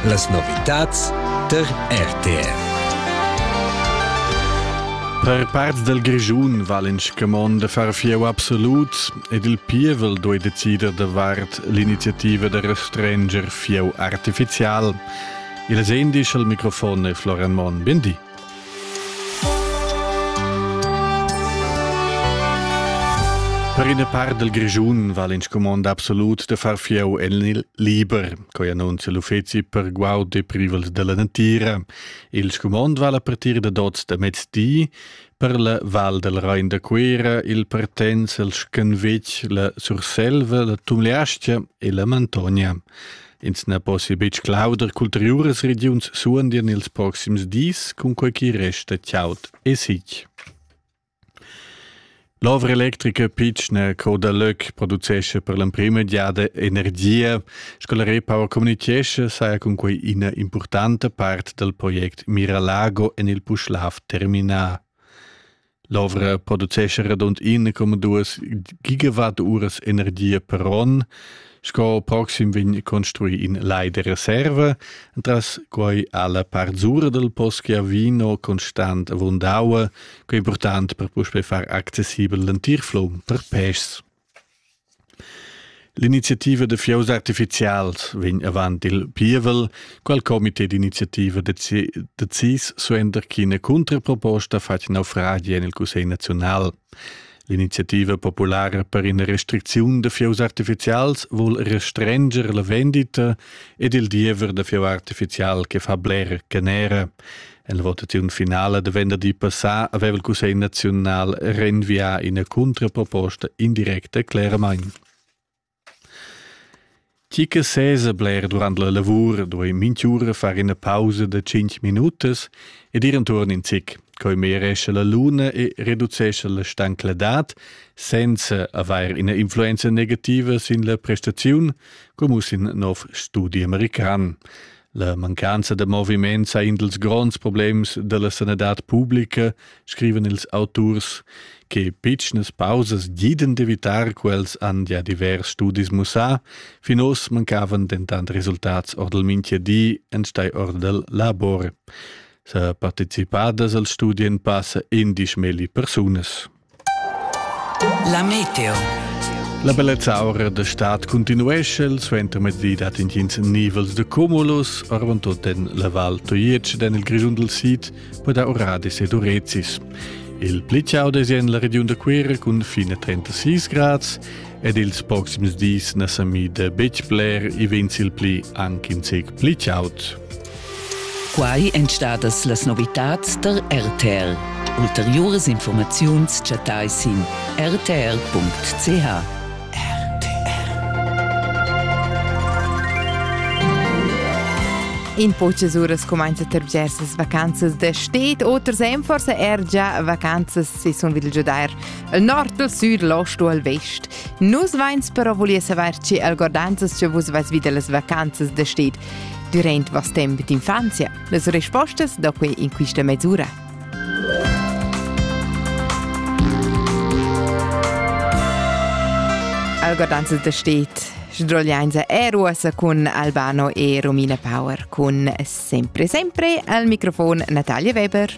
Las novitads tar RTR. Per parts del Grischun val in scamond de far fieu absolut ed il pievel doi decider davart l'iniziativa de restrenger fieu artificial. Il asendisch al microfon è Florian Monn. Bindi. Per ina part del Grischun val in scumond absolut de far fieu en il liber, coi annunzia l'uffeci per guaud e privels della natira. Il scumond val a partir de dots de mezdi, per la val del Rein de Cuera il partenz el Schenvec, la Surselva, la Tumleastia e la Mantonia. Ins na possia betg clauder qu'ulteriuras regiuns suondian ils proxims dis, cunquai ch'i resta chaud e sic. L'ovra electrica pitschna Coda Löck producescha per l'emprima giada energia. Sco la Repower communichescha, saja cunquai ina impurtanta part dal project Miralago en il Puschlav terminà. L'ovra producescha radund 1,2 gigawatt uras energia per onn. Sco proxim vegn construì in lai de reserva, entras quai ha la part sura del Poschia Vino constant avunda aua, quei portant per puspei far accessibel l'entir flum per pèschs. L'iniziativa da fieus artificials vegn avant il pievel, qual comité d'iniziativa decis suenter ch'ina cuntraproposta fatg naufragi en il Cussegl naziunal. L'iniziativa populara per ina restricziun da fieus artificials vul restrenger la vendita ed il diever da fieu artificial che fa bler canera. La votaziun finala da venderdi passà aveva il Cussegl naziunal renvià ina cuntraproposta indirecta cleramain. Chi che sesa bler durant la lavur duai minchiura far ina pausa da 5 minutas ed ir intorn in zic, coi meresce la luna e reducesce la stancladad senza avair ina influenza negativa sin la prestaziun, come in nov studi american. La mancanza da moviment sa in dals gronds problems dalla sanadad publica, scriven ils auturs, che pitschnas pausas giden d'evitar quels han ja divers studis mussà, fin oz mancavan dentant resultats or dal minchia di enstei or dal labor. Sa participadas al studien passa indisch melli persunas. La meteo. La bellezza aura da stad continuesce, il suentermezdi dat intgins nivels de cumulus, arvan tot en la val Toiec den il Grischun del Sid, per da Oradis ed Urezis. Il pli ciao desien la regiun da Quera cun fine 36 grads ed ils proxims dis na sa mi de betg bler i vens il pli anche in sec pli ciaut. Quai èn stadas las novitads tar RTL. Ulteriuras informaziuns chattai sin rtl.ch. In po čez uras cumainzat er bgers vacanzas da sted, oters èn forse er già vacanzas si sun vil giudair al nord, al sud, l'ost u al vest. Nus vains però volia savair ci algordanzas che vus vais vid las vacanzas da sted. Durant vast temp d'infanzia las respostas da quei in quista mesura. Algodanza da stet Sdroglianza Airways cun Albano e Romina Power. Con sempre sempre al microfon Natalia Weber.